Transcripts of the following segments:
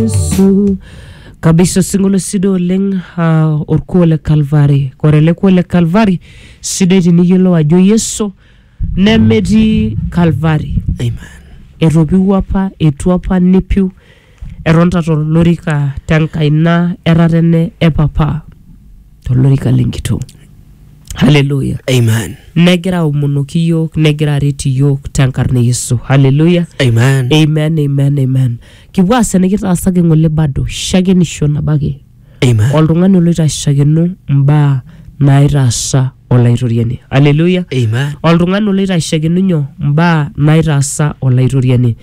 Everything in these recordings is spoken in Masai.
Yesu. kabisa osingolio sidai oleng uh, orkuo le kalvari ore ele kuo le kalvari sidai tiniyiolou ajo yesu nemetii kalvari Amen. etopiwuo apa etu apa nepiu etonta tolorika tenkaina etatene e papa tolorika le nkitoo haleluya Amen. negira aomonoki iyiook negira aret iyiook tenkarna e yesu haleluya Amen. amen amen amen kipuo aas enikitaasaki ng'ole bado shakenisho nabo ake Amen. oltung'ani oloito ashakeno mbaa naitaasa olaitoriani haleluya Amen. oltung'ani oloito ashakeno nyoo mbaa naitaasa olaitoriani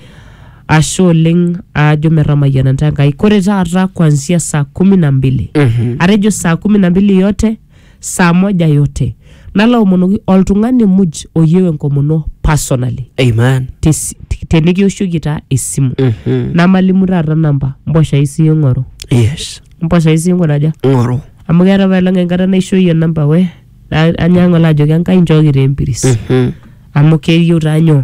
ashe oleng aajo metamayiana ntae Enkai kore taata kuanzia saa kumi na mbili atejo saa kumi na mbili yote saa moja yote nalo aomonoki oltung'ani muj oyieu enkomono personally Amen. Tes- tenikioshoki taa esimu Mhm. namalimu taata namba mboshai sii ing'oru Yes. mboshai sii ing'oru aja Ng'oru. amu keeta paelong enkata naishooyie namba we na- anyang'u alo ajoki Enkai nchooki taa empiris Mhm. amu keyieu taa nyoo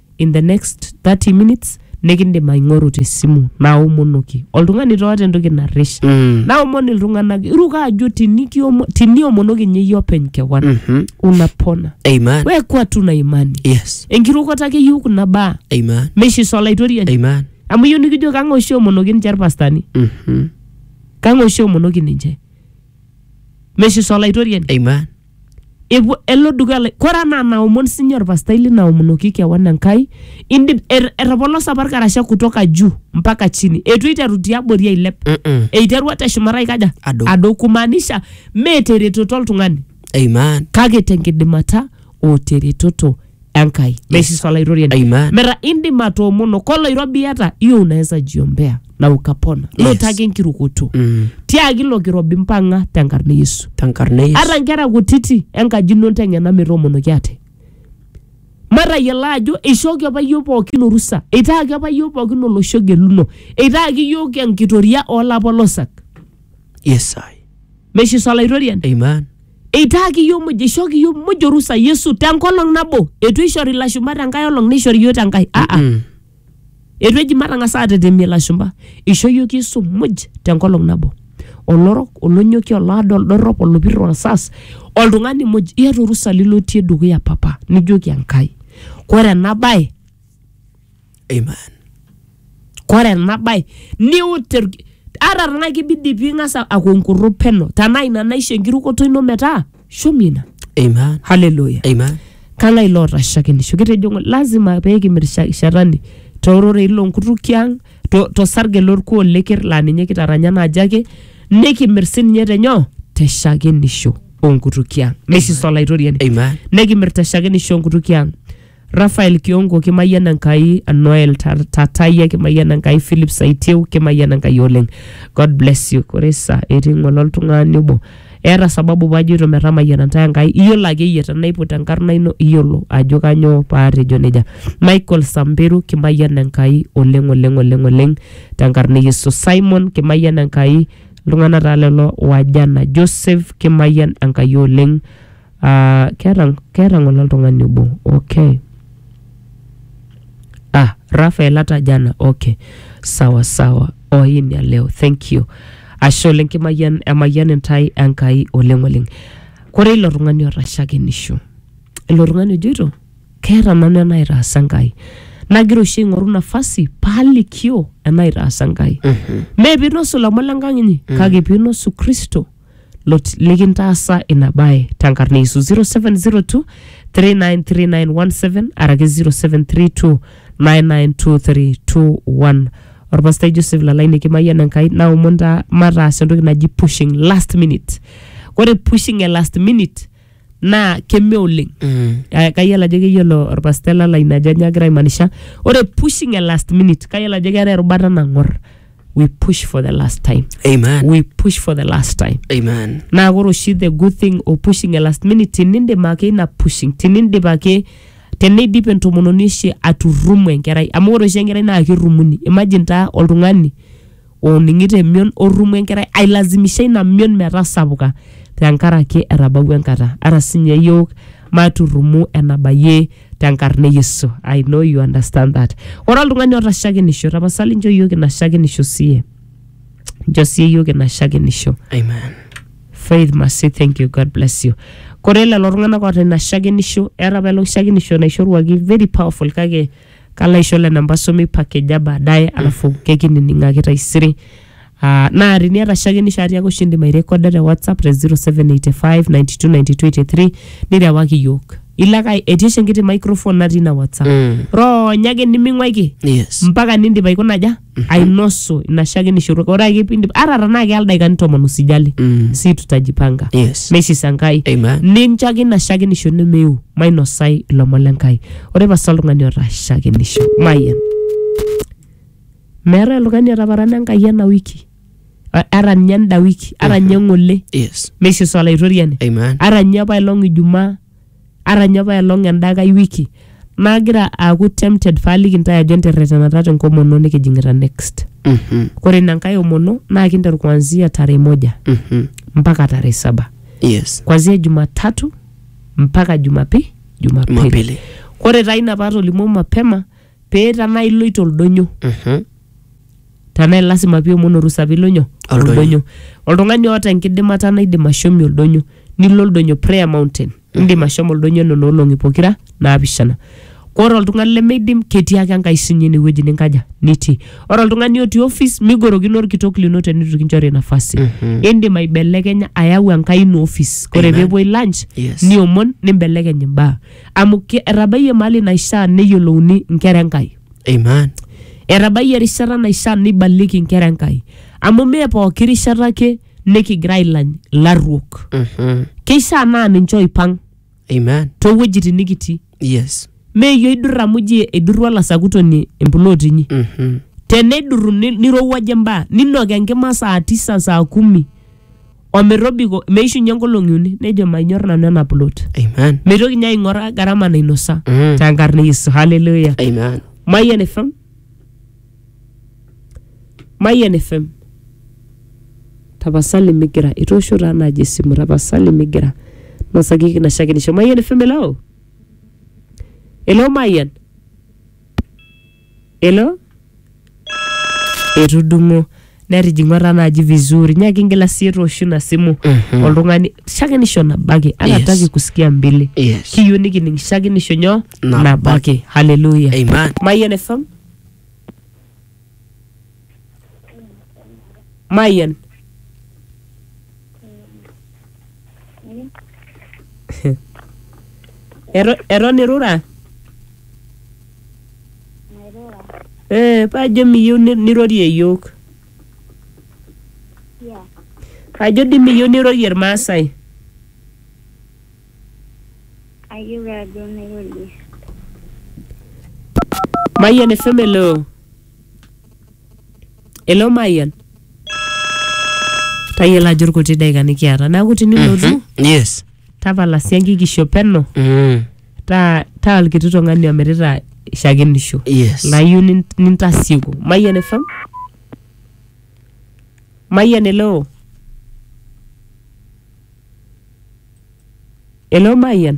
in the next 30 minutes nikindim aing'oru tesimu naomonoki oltung'ani toota entoki narrish Mm. naomon iltung'anak iruka ajo tinikiomo- tiniomonoki ninye iyie openy kewan Mhm. unapona Amen. wekwa tuna imani Yes. enkirukoto ake eyieu kuna baa Amen. meishiso olaitoriani Amen. amu iyieu nikijo kang'e oshi omonoki ninche irpastani Mhm. kang'e oshi omonoki ninche meishiso olaitoriani Amen. epuo elo dukuya lai- kore anaa naomon sinye orpastai lino aomonoki kewan Enkai indip er- etopolosa apa irkarasha kutoka juu mpaka chini etu eiteru tiabori ailep Mm-mm. eiterua teshumata aikaja Adou. adou kumaanisha mee teretoto oltung'ani Amen. kake tenkidimata o teretoto Enkai. Yes. Yes. Olaitoriani. Amen. Mera indim atoomono koloirobi iyata hiyo unaweza jiombea na ukapona. Yes. Lotaki enkirukoto. Mm. Tiaki ilo kirobi mpang'a tenkarna e Yesu. Tenkarna Yesu. Ata nkera kutiti enkaji ino nteng'ena metoomonoki ate. Matayiolo ajo eishooki apa iyiook pookin orusa, eitaaki apa iyiook pookin olosho geluno, eitaaki iyiook enkitoria oolapolosak. Yes, I. Meshiso Olaitoriani. Amen. Eitaaki iyiook muj, eishooki iyiook muj orusa Yesu tenkolong nabo. Eitu eishori ilashumba tenkae olong neishori iyiook tenkae. Ah ah. Mm. Eitu eji matang'as aatetemie ilashumba. Eishoo iyiook Yesu muj tenkolong nabo. Olorok, olonyoki, olaado, oldorrop, olopir, olsas, oltung'ani muj. Iyata orusa lilotie dukuya papa nijoki Enkai. Kore ena bae Amen. Kore ena bae niut irki- ata tenaa kibidi ping'as aku enkurru peno tenaa ina naisho enkirukoto ino metaa shomi ina. Amen. Haleluya. Amen. Kang'ae loota shakenisho? Kitejo ng'ole lazima pee kimir sha- shetani toororei loonkutukie ang', to- tosarge lorkuo leker laa ninye kitaranya naaji ake, nikimir sininye tenyoo? Te shakenisho oonkutukie ang'. Meishiso Olaitoriani. Amen. Nikimir te shakenisho oonkutukie ang'. Rafael Kiongo kimayian Enkai, Noel Ta- Tatayia kimayian Enkai, Philip Saitieu kimayian Enkai oleng. God bless you. Ore sa etii ng'ole oltung'ani obo. Eeta sababu pajoito metamayiana ntae Enkai. Iyiolo ake iyie tenaiput enkarna ino iyiolo ajo kanyoo paatejo nejia. Michael Samberu kimayian Enkai oleng oleng oleng oleng tenkarna e Yesu. Simon kimayian Enkai. Iltung'anak taa lelo wajana. Joseph kimayian Enkai oleng. Ah, keeta, keeta ng'ole oltung'ani obo, okay. Ah, Raphael hata jana, okay. Sawa sawa, oh hii ni ya leo, thank you. Ashe oleng kimayian, emayian intae Enkai oleng oleng. Kore ilo tung'ani otashakenisho, ilo tung'ani ojoito keeta nanu enaitaasa Enkai. Nagira oshi aing'oru nafasi palikio enaitaasa Enkai. Mee pinosu ilomon le nkang inyi, kake pinosu Kristo. lot- likintaasa ina bae tenkarna Yesu 0702 393917 araki 0732 992321 orpastai Joseph Lalai nikimayian Enkai naomon taa mataas entoki naji pushing last minute ore pushing e last minute naa keme oleng Mm. Eh, kayiolo ajo keyiolo orpastel lala ina ajo nyoo agira aimanisha ore pushing a last minute kayiolo ajo keetae erubata nang'or we push for the last time Amen. we push for the last time Amen. naa ore oshi the good thing o pushing a last minute tinindip ake ina pushing tinindip ake teneidip entomononi oshi aturumu enkerai amu ore oshi enkerai naa kirumuni imagine taa oltung'ani ooning'ito emion orrumo enkerai ailazimisha ina mion metasapuka tenkaraki etabawua enkata ara sinye yiok maturrumu enabayie tenkarna e Yesu I know you understand that ore oltung'ani oota shakenisho tapasali nchoo yiok ina shakenisho siye nchoo siye yiok ina shakenisho Amen. Faith Masi, thank you, God bless you. Kore lelo tung'anak oota ina shakenisho, eeta apaelong shakenisho naishoruaki very powerful kake kalo aisho lena mpaso meipakeja baadaye alafu kekinining'aki taisere Ah, naa teniata shaake nishaari ake oshi indim airekoda te whatsapp te 0785929283 nirewaki iyiok ilo ake etii oshi enkiti microphone natii ina whatsapp Mm. ronya ake niming'uaiki Yes. mpaka nindip aikuna aja ainosu ina shakenishoto ore ake piindip ata tenaa keya ildaikani tomon usijali Mm. si tutajipanga Yes. neishisa Enkai Amen. nincho ake ina shakenisho nemeu mainosai ilomon le Nkai ore pasa oltung'ani oota shakenisho mayian meetae oltung'ani otaparana Enkai ena wiki A- ata ninye enda wiki ata ninye ng'ole Yes. meishisa olaitoriani Amen. ata ninye apailong ijumaa ara ninye apaelong enda nkae wiki nagira aaku tempted paaliki ntae ajo enterretenata tenkomono nikijing'ita next Mhm. kore ina nkae omono naa kinteru kuanzia tarehe moja Mhm. mpaka tarehe saba Yes. kuanzia jumatatu mpaka jumapi jumapili Jumapili. kore taa ina paatolimuo mapema pee tanaa iloito oldonyo Mhm. tenaa lasima piomon orusa pilo nyoo Oldonyo. oldonyo oltung'ani oota enkidimata naidim ashomi oldonyo nilo oldonyo prayer mountain indim ashomo oldonyo nena olong'i pokira naapishana ore oltung'ani lemeidim ketii ake enkai sinye inewueji ninkaja nitii ore oltung'ani otii office migorokino orkitok lino tenitu kinchori nafasi indim aibelekenya ayau enkai ino office ore Amen. peepuoi lunch Yes. niomon nimbelekeny imbaa amu ke- etabayie mahali naishaa neyiolouni inkera enkai Amen. etabayie erishata naishaa neibaliki inkera enkai amu mee pooki rishata ake nikigira ailany ilarruok Mhm. keishaa naa ninche oipang Amen. toowuejitin nikitii Yes. meeyie oidur amu ji eidurua olasakutoni empuloot inyi Mhm. tenedurru ni- nirowuaje mbaa ninok enkima saa tisa saa kumi ometobiko meishunye nkolong'i uni nejo manyor nanu ena plot Amen. meitoki ninye aing'oraa gharama nainosa Mm. tenkarna e yesu haleluya Amen. Mayian FM. Mayian FM. Tapasali migira. Itoosho taa naaji esimu. Tapasali migira. Nosaki kinashakinisho. Mayian FM elao. Elao Mayian. Hello? Etudung'o. Netijing'u etaa naaji vizuri. Nyaaki ingila sii tooshu ina simu Mhm. oltung'ani shakenisho nabo ake. Yes. Anataki kusikia mbili. Yes. Kiyieu nikining shakenisho nyoo? Nabo Nabo ake. Hallelujah. Amen. Mayian FM. Mayian. Eto- Eton irura? Mairura. Eh, paajo miyieu ni- nirorie iyiok. Tia. Ajo dii miyieu nirorie Irmaasai. Ayieu ajo nairorie. Mayian FM eloo. Hello Mayian. Tayiolo ajo irkuti daika nikiata. Neeku tinilotu yes tapala sii enkikisho peno mm. taa taa olkiti tung'ani omirita shakenisho. yes Layieu nin- nintasieku. Mayian efam. Mayian hello. Hello Mayian.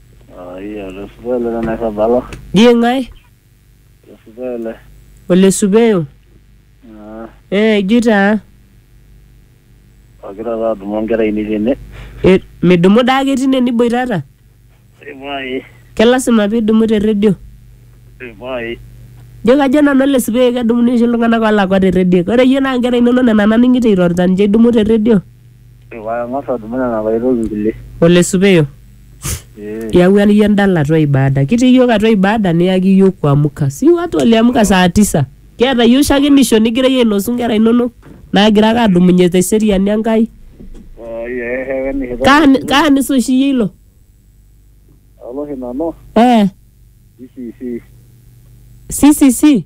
Aiyata osupele le naisabala. Die ng'ae? Osupele. Ole supeyo? Ah. Eh, ijui taa. Agira taa adumu onkera ainei tene. Eh, midumu daa ake tine niboitata? Eh, pae. Ke lasima pidumu te redio? Eh, pae. Ijo kajo nanu ole supeyo kedumuni oshi iltung'anak olakwa te redio. Ore iyie naa inkera inonok nena naning'ito irorita ninche idumu te redio? Ore paa eng'as adumu nena paa aitoki inkulie. Ole supeyo. Ee. Iyawua iyie endala atua ibada. Kitii iyiook atua ibada niyaki iyiook kuamka. Si watu waliamka saa tisa. Kiata iyiook shakenisho nigira iyie ainosu inkera inonok naagira ake adumunye te seriani Enkai. Oi ee shakenisho. Kaa ani- kaa anisa oshi iyie ilo? Alo oshi nanu Eh, CCC. CCC?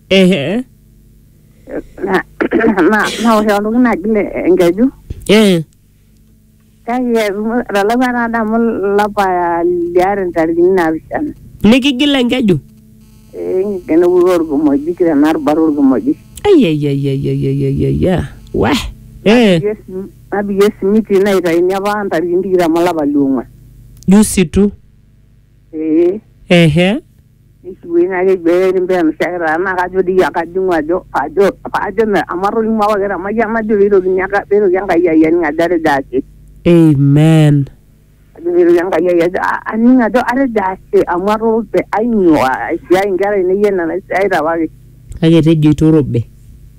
ehe Na- na- naosh oltung'ani naji le- enkeju eh kake etumo- etalakua taa adamu lapa liare ntarikini naapishana nikigila enkeju enepuku orkimojik tena rubata orkimojik aiaiaiaiaiaiaia wa eh Napikie sim- napikie simiti naitaini apa ntarikini tikitam olapa liong'uan jusi tu ee ehe nishukuye naa keji eri mbee mshairi taa naa kajo dii iyie kajing'u ajo ajo ajo me amu atolimuo apa kira mayian najo peitokini enka peitoki enkai ai aning ajo atejo ashe amen ajo peitoki enkai ai ajo a- aning ajo atejo ashe amu atoorope ainyoo aisiai inkera ainei enaa enaisiaita apake kake tejo itorobe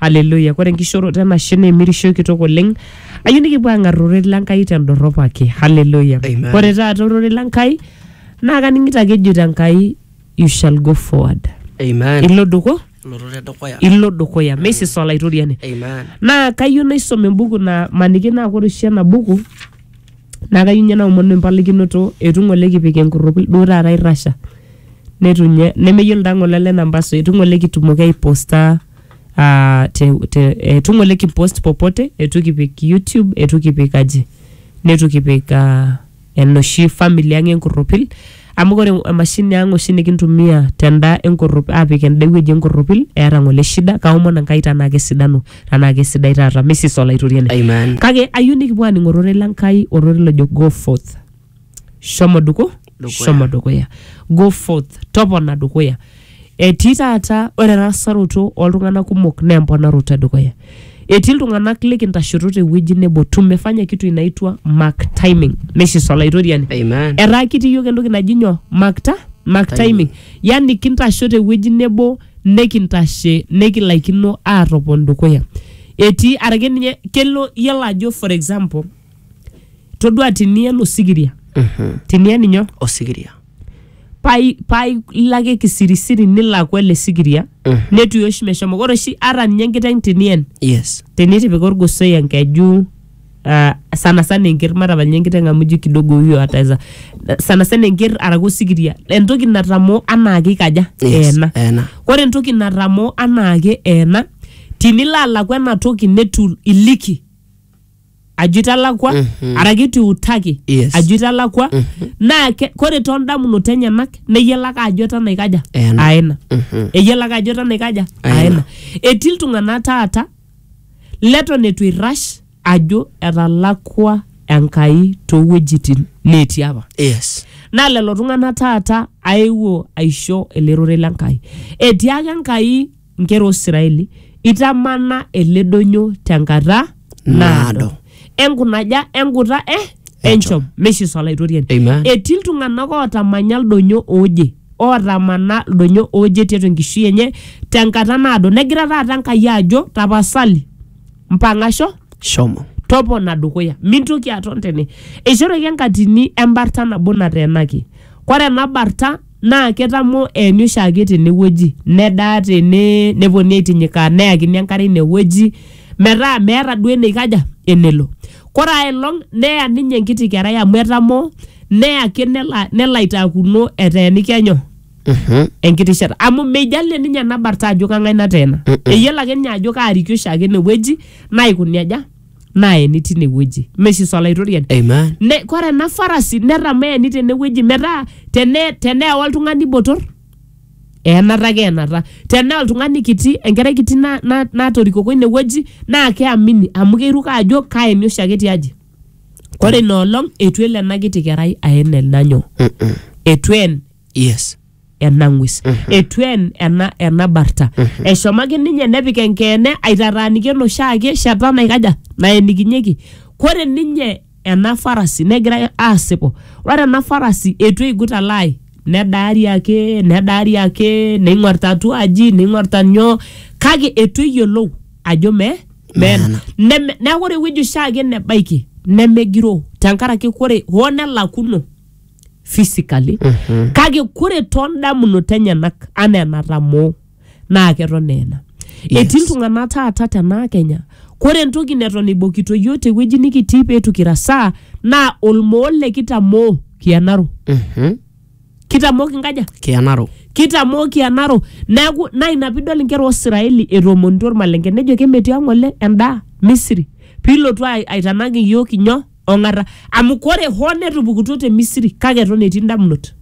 Haleluya. Kore enkishooroto enashe naa emirishoi kitok oleng. Ayieu nikipuo aang'ar ororei le Nkai tendorrop ake. Haleluya. Amen. Kore taata ororei le Nkai naa kaning'ito ake ejoito Enkai you shall go forward. Amen. Ilo duku, Lototo edukuya. ilo dukuya. Meisisa Olaitoriani. Amen. Naa kayieu naisom embuku naa maniki naa kore oshi ena buku Naa kayieu ninye naomonu empalikinoto eitu ng'ole kipik enkurruki duo taata irrasha neitu ninye nemeyiolo taa ng'ole ele namba so eitu ng'ole kitumoki aiposta ah, te, te, eitu ng'ole kipost popote eitu kipik YouTube eitu kipik aji neitu kipik ah, enoshi family ang' enkurropil. Amu ore emashini ang oshi nikintumia tenda enkorrop apik enda ewueji enkorropil eeta ng'ole shida kaomon Enkai tenaa kesidanu tenaa kesidai taata Mrs Olaitoriani. Amen. Kake ayieu nikipuo aaning ororei le Nkai ororei lojo go forth shomo duku Dukuya. shomo dukuya go forth topona dukuya Etii taata ore erasaroto oltung'anak kumok naa emponaroto edukuya. Etii iltung'anak likintashoto tewueji nebo tumefanya kitu inaitwa mark timing. Neshis olaitoriani. Amen. Etaa kitii iyiook entoki naji nyoo mark ta mark timing. Yani kintasho tewueji nebo nikintashe nikilaikino aatopon dukuya. Etii arake ninye kelo iyiolo ajo for example todua tiniyen osikiria tiniyen inyoo? Osikiria. pai pai ilo ake kisirisiri nilakua ele sikiria netuyo oshi meshomo ore oshi ata ninye enkiteng tinien yes tinitipika orgosoi enkeju ah, sana sana enker matapal ninye enkiteng amu ijo kidogo huyo ataweza sana sana enker araki osikiria entoki natamoo anaake ikaja Yes, eena eena. ore entoki natamoo anaake eena tinilo alaku ena toki netu iliki ajo italakwa Mhm. araki itu iutaki Yes. ajo italakwa naa ke- kore too ndamunot enyenak neyiolo ake ajo eton aikaja Ena. aena Mhm. eyiolo ake ajo eton aikaja Aena. aena etii iltung'anak taata leton eitu eirrash ajo etalakwa enkai toowuejitin neetii apa yes naa lelo tung'anak taata aewuo aisho ele rorei le nkai etii ake enkai nkera o Israeli, itamana ele doinyo tenkata naado. Naado. Enkunaja enkuta eh enchom meishiso olaitoriani. Amen. Etii iltung'anak ootamanya ildonyo ooje ootamana ildonyo ooje tiatua enkishui enye tenkata naado. Negira taata Enkai ajo tapasali mpang'asho Shomo. topona dukuya mintoki aton tene eishooki enkatini embarta nabo nateenaki kore ena barta naa ketamo eeni oshiake tenewueji nedaa tene neponii aitinyikaa neyakini enkare inewueji metaa meeta duo eneikaja enelo kore ae elong neya ninye enkiti kerai amu etamoo neya ake nelo, nelo aitaakuno eteeniki enyo Mhm. enkiti shata amu meijalie ninye ena barta ajo kang'ae nateena eyiolo ake ninye ajo kaariki oshiake enewueji naikuni aja naeni tine wueji meshiso olaitoriani Amen. ne, kore ena farasi netameeni tene wueji metaa tene, tenea oltung'ani botor eenata ake eenata tenaa oltung'ani kiti enkerai kiti na, na, natorikoko ine wueji naa keamini amu keiruk ajo kaeni oshiake tiaji kore ina olong eitu elo ena kiti kerai aen ena nyoo Mm-mm. eitu een Yes. ena ng'ues etu en ena, ena barta eshomo ake ninye nepik enkeene aitataaniki enoshiake shata naikaja naenikinyeki kore ninye ena farasi negira asipu ore ena farasi etu eigut alaai nedaari ake nedaari ake neing'orita atua aji neing'orita nyoo kake etu eyiolou ajo me meena Neme- neeku ore ewueji oshiake nebaiki nemegiroo tenkaraki kore hoo nelakuno physically kake kore toondamunot enyenak anaa enatamoo naa keton eena Yes. etii iltung'anak taata tenaa kenya kore entoki neton eibokito yiok tewueji nikitii peetu kirasaa naa olmoo le kitamoo kianaro kitamoo kinkaja kianaro kitamoo kianaro neeku naa ina piidol inkera osiraeli etoomonito ormalenke nejo kemetii ang'ole endaa misiri piilotu ai- aitanak iyiok inyoo ong'ata amu kore hoo netupukutuo te misiri kake eton etii ndamunot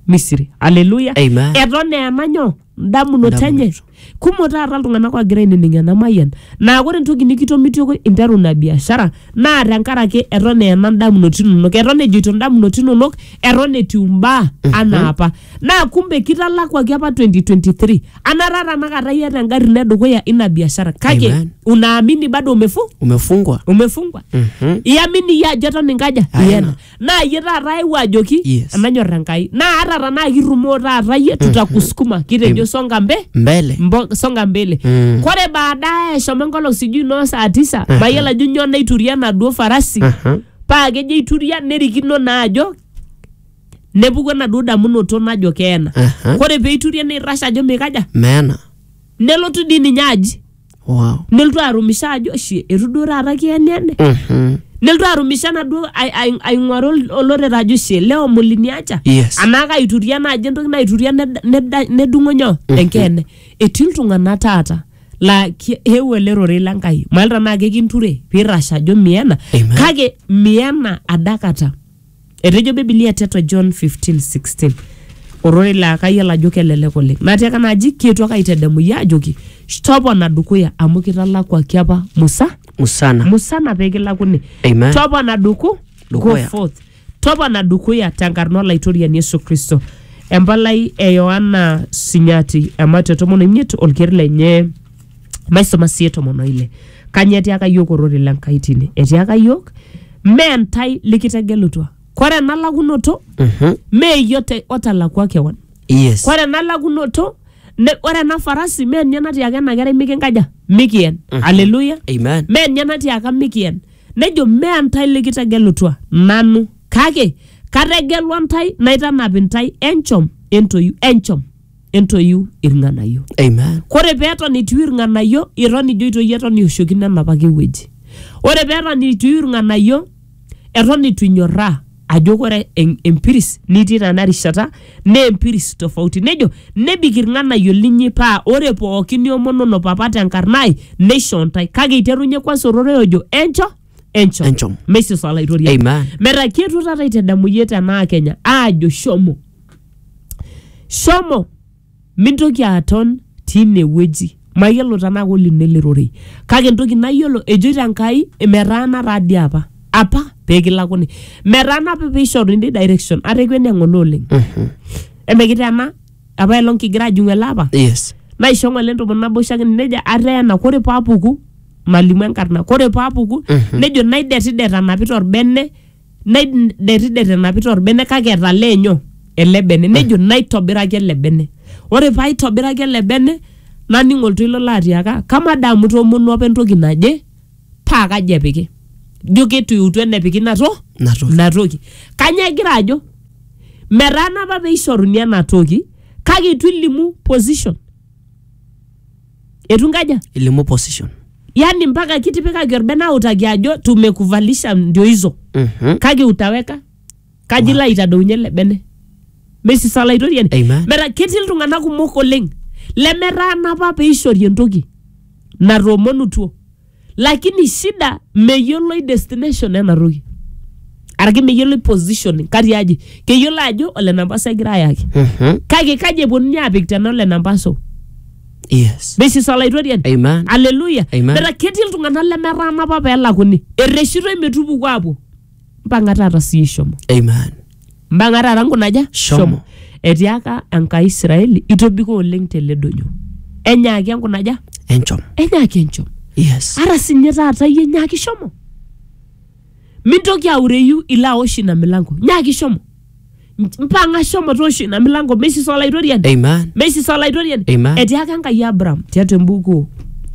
misiri aleluya Amen. eton eena nyoo ndamunot Ndamunot. enye kumok taata iltung'anak oogira ainining ena mayian naa kore entoki nikitomitioki interu ina biashara naa tenkaraki eton eena ndamunot inonok eton ejoito ndamunot inonok eton etiu imbaa anaa apa naa kumbe kitalakuaki apa 2023 anataa tanakata iyata engari ino edukuya ina biashara kake Amen. unaamini bado umefu umefungwa umefungwa Mhm. iamini iyie ajo eton inkaja Aina. iyena naa iyie taata aewuo ajoki Yes. enanyor enkai naa ata tanaa kirrumoo taata iyie tutakusukuma kitejo songa mbe mbele mbo- songa mbele Mm. kore baadaye eshomo enkolong sijui noo saa tisa mayiolo ajo nyoo naituria enaduo farasi Aha. paa kejo aituria nerikino naa ajo nepuku enaduo damunoto najo keena Aha. kore peiturie neirrash ajo meikaja meena nelotu dii ninye aji wow. nelotu arumisho ajo shi etu duo taata kieniene Mhm. nelotu arumisho enaduo ai- ai- aing'uaru ol- olorere ajo shi leo muliniacha Yes. anaa kaituria naaji entoki naituria ned- neda- nedung'o nyoo enkeene etii iltung'anak taata laa ki- eewuo ele rorei le Nkai mailta naa kekinture piirrash ajo miena Amen. kake miena adakata Etejo Bibilia tiatua John 15:16 ororei laa kayiolo ajo kelelek oleng. Natiaka ena aji kietuo ake aitedemu iyie aajoki topona dukuya amu kitalakuaki apa Musa Musana. musana pee kilakuni Amen. topona duku go Dukuya. forth topona dukuya tenkarna olaitoriani Yesu Kristo empalai e Yohana Sinyati ematua tomon oimiet olker lenye maisoma sie tomon oile kanye etiaka yiok ororei le Nkai tine etiaka yiok mee ntae likitegelutua kore ena lakunoto Mhm. mee iyio te- otalakua kewan Yes. kore ena lakunoto ne- ore ena farasi mee ninye natiaka ena kerai mikinkaja mikien aleluya Amen. mee ninye natiaka mikien nejo mee ntae likitegelutua nanu kake kategelua ntae naitanap ntae enchom entoyu enchom entoiu irng'anayio Amen. kore peton etiu irng'anayio iton ijo itoi eton iwoshokino enapake wueji ore peton etiu irng'anayio eton itu inyorraa ajo kore en- empiris nitii tena rishata naa empiris tofauti nejo nebik irng'anayio linyi paa ore pookin niomonono papa tenkarna ai neisho ntae kake iterunye kwanza ororei ojo encho encho Encho. meisisa olaitoriani Amen. metaa kietuo taata aitadamu iyie tenaa kenya aajo shomo shomo mintoki aton tine wueji mayiolo tenaa kolino ele rorei kake entoki nayiolo ejoito enkai metaana taa dii apa apa peekilakuni metaana apa peishoru intae direction ata ekwenia ng'ole oleng emekitena apa elong kigira ajing'u ele apa yes naisho ng'ole entomon naboisho ake nejia ateena kore paapuku nalimu enkarna kore paapuku nejo naidetidet anapita orbene naiderrider enapita orbene kake etalee enyo ele bene nejo naitobiraki ele bene ore paitobiraki ele bene naning oltoilo laatiaka kamaa dee amu itoomonuo apa entoki naje paa kaji epiki ijo ketu eutu enepiki inato Inatoki. inatoki kanyoo egira ajo metaana apa peishoruni enatoki kake itu ilimu position etu inkaja ilimu position yani mpaka kitipikaki orbene autaki ajo tumekuvalisha ndio hizo Mhm. kake utaweka kaji ilo aitadounye ele bene mesisa olaitoriani Amen. metaa ketii iltung'anak kumok oleng lemetaana apa peishori entoki natoomonutuo lakini shida meyioloi destination ena toki araki meyioloi positioning kati aji keyiolo ajo ole nampasa egira ayaki Mhm. kake kaji eponunui apik tena ole nampaso Yes. this is olaitoriani Amen. aleluya Amen. metaa ketii iltung'anak lemetaana apa pelakuni ereshitoi metupuku apuo mpang'a taata sii shomo Amen. mpang'a taata nkunaja Shomo. etiaka enkai israeli itobiko oleng tele doinyo enyaaki enkunaja Enchom. enyaaki enchom Yes. ara sinye taata iyie nyaaki shomo mintoki aureyu ilo aosh ina milango nyaaki shomo Nch- mpang'a shomo toosho ina milango meisisa olaitoriani Amen. meisisa olaitoriani Amen. etiaka enkai abraham tiatua embuku